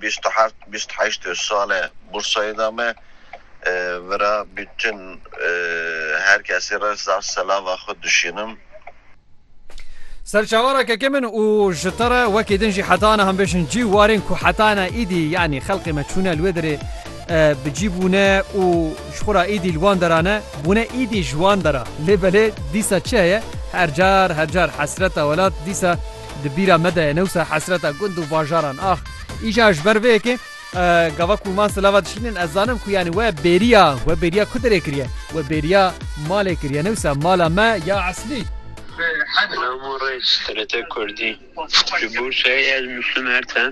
Bîst û heft, bîst û heşt sale bursayê da me. Vira bütün her kesê re zaf selava xwe duşînim. Ser çavara kekê min û ji te re wekî din jî heta niha bêjin cî warên ku heta niha îdî yanî xelqê me çûne li wê derê bi cî bûne û ji xwe re îdî li wan dera ne bûne îdî ji wan dera lê belê dîsa çi heye her car her car hesreta welat dîsa Di bîra me de ye ne wisa hesreta gund û bajaran ax. Îcar ji ber vê yekê gava ku wan silava dişînin ez zanim ku yanî we bêriya we bêriya ku derê kiriye we bêriya malê kiriye ne wisa mala me ya eslî. Selam û rêz TRT Kurdî. Ji bo çayê ez nûştim her tem.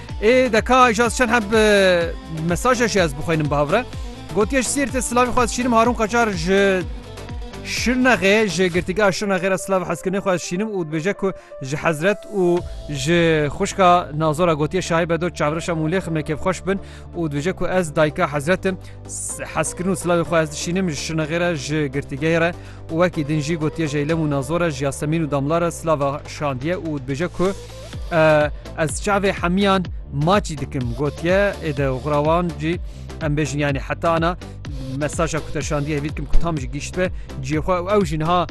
Ê deka ji ez çend heb mesaje jî ez bixwînim bi hev re. Gotiye ji Sîrtê silavî xwe ez şînim Harûn Qacar ji Şirnexê ji girtîgeha Şirnexê re silav hezkirinê xwe ez şînim û dibêje ku ji hezret û ji xwişka nazora gotiye şahî bedo çavreşa mûlê ximê kêfxweş bin û dibêje ku ez dayika hezretim hezkirin û silavê xwe ez dişînim ji Şirnexê re ji girtîgehê re û wekî din jî gotiye jeylem û nazora ji Yasemîn û damla re silava şandiye û dibêje ku Ez çavê hemiyan maçî dikim gotiye ê de xurawan cî em bêjin yanî heta ana mesaja ku te şandiye hevî dikim ku tam ji gîşt be ciyê xwe û ew jî niha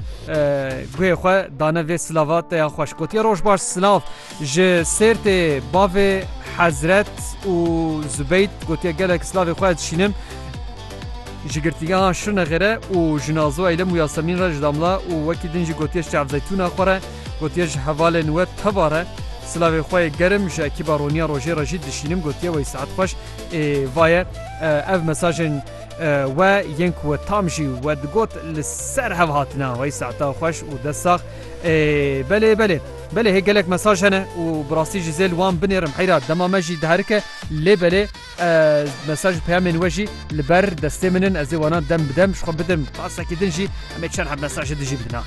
guhê xwe dane vê silava te ya xweş gotiye roj baş silav ji sêrtê bavê hezret û zubeyt gotiye gelek silavê xwe dişînim ji girtiya şirne xêre û jinazo eylem û yasemîn re ji damla û wekî din jî gotiye çavzeytûna xwe re Gotiye ji hevalên we tevare silavê xwe yê germ ji ekîba Roniya Rojê re jî dişînim gotiye wey saet xweş ê vaye ev mesajên we yên ku we tam jî we digot li ser hev hatine wey saeta xweş û dest sax ê belê belê belê hê gelek mesaj hene û bi rastî jî zêl wan binêrim heyra dema me jî diherike lê belê mesaj peyamên we jî li ber destê min in ez ê wana dem bidem ji xwe bidim qasekî din jî em ê çend hev mesajê dijî bidina.